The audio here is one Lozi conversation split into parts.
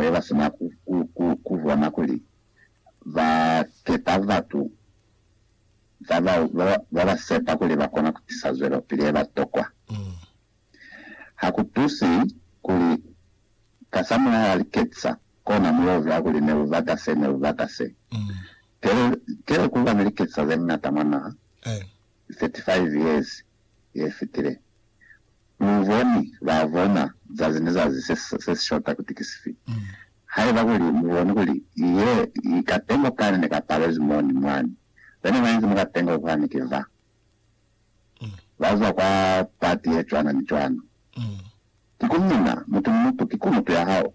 kale ba sina ku bona kuli ba kepa batu ba ba sepa kuli ba kona ku tisa zwelopili ye ba tokwa. Ha ku tusi kuli kasamulaho ha li ketisa kona mu yo zwa kuli ne lu bata se, ne lu bata se. Kele ku ba ne li ketisa ze ñata mwa naha 35 years. yefitile. Luboni babona zazi ni zazi sesishota kuti kisifi. Haiba kuli muboni kuli ye i katengo kani ne kapalezwi moni mwani, bena bainzi mwa katengo kwani ki ba bazwa kwa pati ye cwana ni cwana. Mm. Ki ku mina, mutu ni mutu ki kumutu ya hao.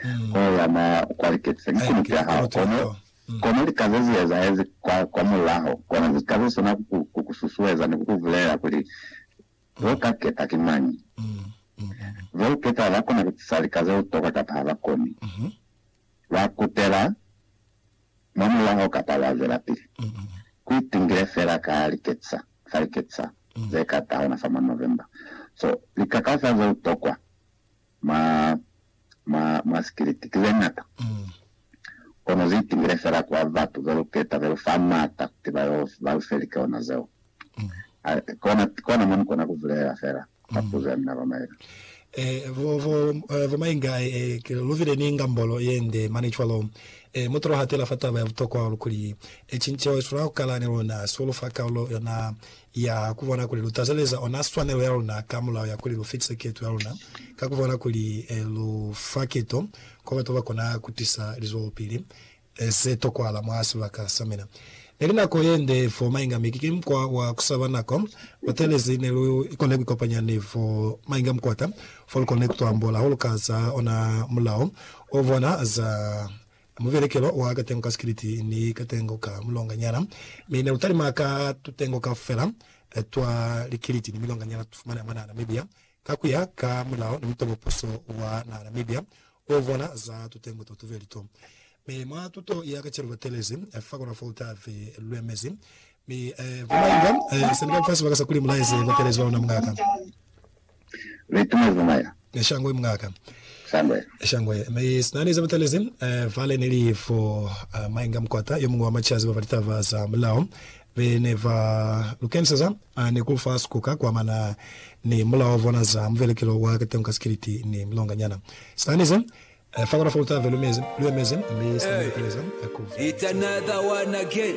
Mm. Ho yana kwa liketisa ki Ai, kumutu ki ya hao. kumutu ya Kono, hao. Mm. kono lika ze zi ezahezi kwa, kwa mulaho, kona zi ka ze sona ku ku, ku ku susueza ni ku ku vulelela kuli, Ve u ka keta ki mañi. Mm. Mm. Mm. Ve u keta ba ba kona ku tisa lika ze u toka kapa ha ba koni. Mhm. Wa kutela mwa mulaho kapa wa zwelapili ku itingile fela ka liketisa fa liketisa ze ka tahona fa mwa November. So, lika kaufela ze utokwa mwa, mwa, mwa sikiliti ki ze ñata, kono zi itingile fela kwa batu be lu keta be lu fa maata kuti ba yo, ba lu fe likeona zeo. Kona mo ni kona ku vulelela fela ka puzo ya mina ba Maenga. Bo Maenga, lu bile ni ngambolo ye nde mane cwalo. Mutu lu hatela fa taba ya butokwa hahulu kuli, cinceho ye swanela ku kala ni luna, sio lu fa kaulo yona ya ku bona kuli lu tazeleza ona swanelo ya luna ka mulao ya kuli lu fitise keto ya luna ka ku bona kuli lu fa keto kwa batu ba kona ku tisa lizwelopili Ne se tokwala mwa sibaka sa mina. Neli nako yende fo mainga mi kiki mukwa wa kusaba nako. Batelezi ne lu kone kuikopanya ni fo mainga mukwata fo lu kone kutwambola hahulu ka za ona mulao o bona za mubelekelo wa katengo ka sikiliti ni katengo ka mulonga nyana. Mi ne lu talima ka tutengo kaufela twa likiliti ni milonga nyana tutu fumana mwa naha Namibia. Ka ku ya ka mulao ni mutobo puso wa naha Namibia u vona za tutengo to tubeli to. Mi mwa tuto ya ka celu ba telezi fa kona fo ta fi lwe mezi. Mi ba mainga seli ba lifasi ba ka sa kuli mulaezi ba telezi ba luna mungaka. Ni itumezi ba maila. Ni shangwe mungaka. Shangwe. Shangwe. Mi sina ni za ba telezi fa le ni li fo maingam kwata yo mungwe wa machazi ba fa litaba za mulao be ne ba lu keniseza. A ni ku fa sikuka kwa mana ni mulao vona za muvelekelo wa kateño ka sikiliti ni mulonganyana. Sitani ze fa kona fa lu tave, lu mezi, lu emezi, mi sitani lu kaleza ku fa. It's another one again.